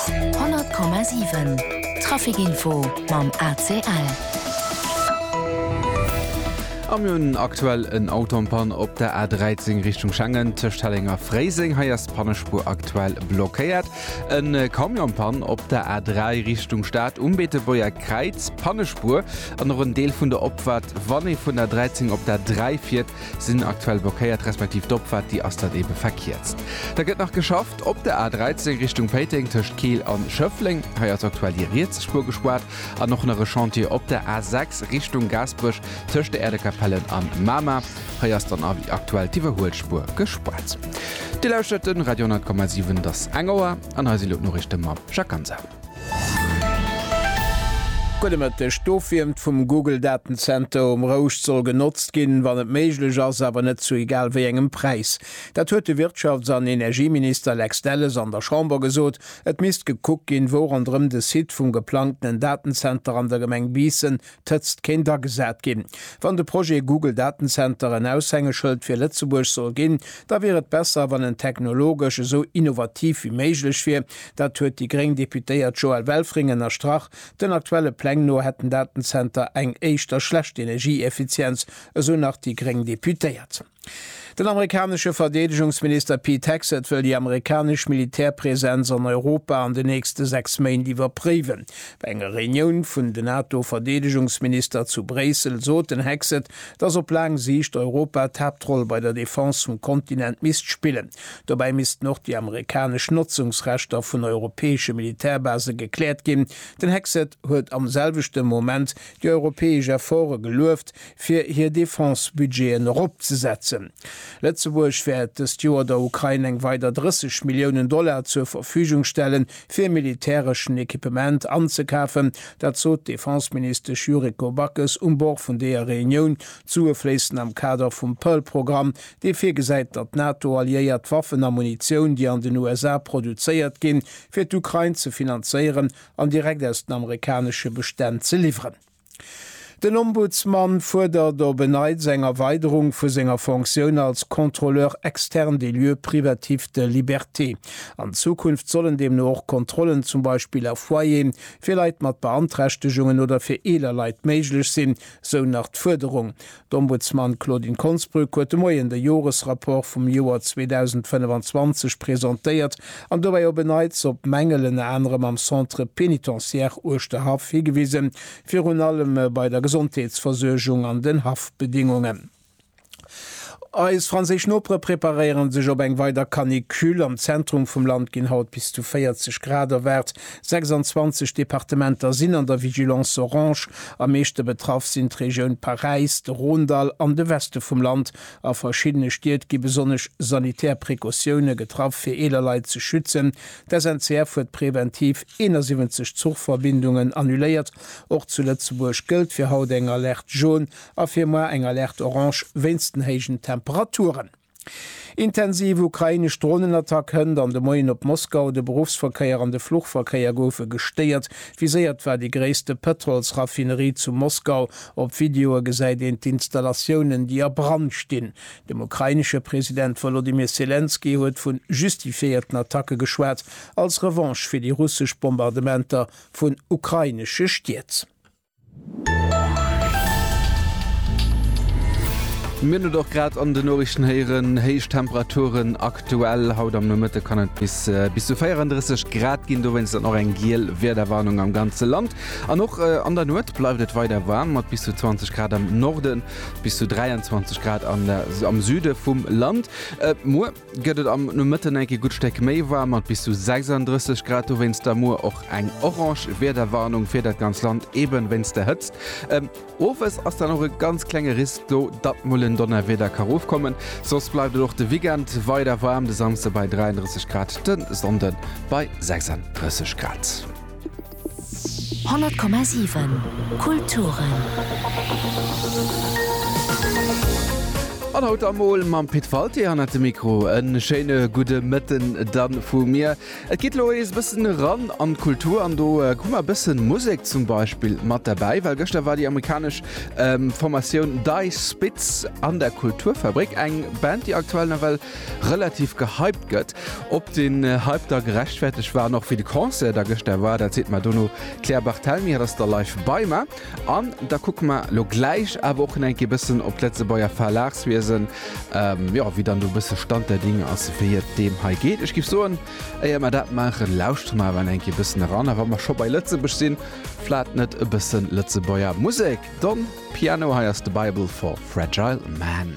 100,7 Trafic Info mam ACL. A mir hunn aktuell en Auto am Panne op der A13 Richtung Schengen tëscht Helleng a Fréiseng. Hei ass d'Pannespuer aktuell blockéiert. E Camion am Panne op der A3 Richtung Stad um Beetebuerger Kräiz. Pannespuer an och en Deel vun der Opfahrt, wann ee vun der A13 op d'A3 fiert. Sinn aktuell blockéiert, respektiv d'Opfahrt déi ass dann eben verkierzt. Da gëtt nach geschafft op der A13 Richtung Péiteng tëscht Keel an Schëffleng. Hei ass aktuell déi riets Spuer gespaart. An och nach e Chantier op der A6 Richtung Gaasperech tëscht der Äerdekapellen an Mamer. Hei ass dann awer aktuell d'Iwwerhuelspuer gespaart. Dir lauschtert den Radio 100,7, et ass eng Auer an hei sinn elo d'Noriichten mam Jacques Ganser. Gudde Mëtteg. D'Ofwiermt vum Google-Datenzenter um Rouscht soll genotzt ginn, wann et méiglech ass, awer net zu egal wéi engem Präis. Dat huet de Wirtschafts an Energieminister Lex Delles an der Chamber gesot. Et misst gekuckt ginn, wou ronderëm de Site vum geplangtenen Datenzenter an der Gemeng Biissen D'Hëtzt kéint agesat ginn. Wann de Projet Google Datencenter en Aushängeschëld fir Lëtzebuerg soll ginn, da wier et besser, wann en technologesch esou innovativ wéi méiglech wier. Dat huet déi gréng Deputéiert Joëlle Welfring ënnerstrach. Den aktuelle Pläng no hätt den Datencenter eng éischter schlecht Energieeffizienz, esou nach déi gréng Deputéiert. Den amerikanesche Verdeedegungsminister Pete Hegseth wëll déi amerikanesch Militärpresenz an Europa an den nächste 6 Méint iwwerpréiwen. Bei enger Reunioun vun den NATO-Verdeedegungsminister zu Bréissel sot den Hegseth, datt op laang Siicht Europa d'Haaptroll bei der Defense vum Kontinent misst spillen. Dobäi missten och déi amerikanesch Notzungsrechter vun europäesche Militärbase gekläert ginn. Den Hegseth huet am selwechte Moment déi europäesch Efforte gelueft, fir hir Defense-Budgeten eropzesetzen. Lëtzebuerg wäert dëst Joer der Ukrain eng weider 30 Milliounen Dollar zur Verfügung stellen, fir militäreschen Equipement anzekafen. Dat sot d'Defense-Ministesch Yuriko Backes um Bord vun deeër Reunioun, zouefléissend am Kader vum Pearl-Programm, dee virgesäit, datt d'NATO-Alliéiert d'Waffen a Munitioun, déi an den USA produzéiert ginn, fir d'Ukrain ze finanzéieren an direkt aus den amerikanesche Bestänn ze liwweren. Den Ombudsman fuerdert op en Neits eng Erweiderung vu senger Fonctioun als Contrôleur externe des lieux privatifs de liberté. An Zukunft sollen deemno och Kontrollen zum Beispill a Foyeren, fir Leit mat Beanträchtegungen oder fir eeler Leit méiglech sinn, sou nach d'Fuerderung. D'Ombudsman Claudine Konsbrück huet de Moien de Joresrapport vum Joer 2025 presentéiert an dobäi op e Neits op Mängel ënner anerem am Centre pénitentiaire Uerschterhaff higewisen, virun allem bei der Gesondheetsversuergung an den Haftbedingungen. Eis franséisch Nopere preparéiere sech op eng weider Canicule. Am Zentrum vum Land ginn haut bis zu 40 Grad erwaart. 26 Departementer sinn an der Vigilance Orange. Am meeschte betraff sinn d'Regioun Paräis, de Rhône-Dall an de Weste vum Land. A verschiddene Stied gi besonnesch sanitär Precautioune getraff, fir eeler Leit ze schützen. D'SNCF huet preventiv 71 Zuchverbindungen annuléiert. Och zu Lëtzebuerg gëllt fir haut eng Alerte jaune a fir moar eng Alerte orange wéinst den héijen Temperaturen. Intensiv ukrainesch Dronenattack hënt an de Moien op Moskau, de Beruffsverkéier an de Fluchverkéier goufe gestéiert. Viséiert war déi gréisste Pëtrolsraffinerie zu Moskau. Op Videoe gesäit een d'Installatiounen, déi a Brand stinn. Dem ukrainesche President Wolodymyr Selenskyj huet vu justifiéierten Attacke geschwat, als Revanche fir déi russesch Bombardementer vun ukrainesche Stied. Wéi mir et och grad an den Noriichten héieren, héich Temperaturen aktuell. Haut am Nomëtte kann et bis bis zu 34 Grad ginn, dowéinst dann och eng giel Wiederwarnung am ganze Land. An och an der Nuet bleift et weider waarm mat bis zu 20 Grad am Norden, bis zu 23 Grad am Süde vum Land. Muer Gëtt et am Nomëtten eng Kéier gutt Stéck méi waarm mat bis zu 36 Grad, dowéinst da muer och eng orange Wiederwarnung fir dat ganz Land, eben wéinst der Hëtzt. Owes ass dann och e ganz klenge Risk do, datt mol en Donnerwieder ka rofkommen. Soss bleift et och de Weekend weider waarm, de Samsde bei 33 Grad, de Sonnde bei 36 Grad. 100,7 Kulturen. An haut emol mam Pit Walté hannert dem Mikro. E schéine gudde Mëtten dann vu mir. Et geet elo ees bëssen eran an d'Kultur an do hu mer bëssen Musek zum Beispill mat derbäi, well gëschter war déi amerikanesch Formatioun Dice Spitz an der Kulturfabrik, eng Band déi aktuell nawell relativ gehypt gëtt. Ob den Hype da gerechtfertegt war an och wéi de Concert da gëschter war, dat seet mer dono d'Claire Barthelmy. Hatt ass da live bei mer an da kucke mer elo gläich awer och nach eng Kéier e bëssen op d'Lëtzebuerger Verlagswiesen, jo, wéi dann do e bësse Stand der Dinge ass, wéi et deem hei geet. Ech géif soen, éier mer dat maachen, lauschtere mer awer nach eng Kéier e bëssen eran. A wa mer scho bei Lëtzebuerg sinn, vlat net e bësse Lëtzebuerger Musek? Don Piano, hei ass The Bible for Fragile Man.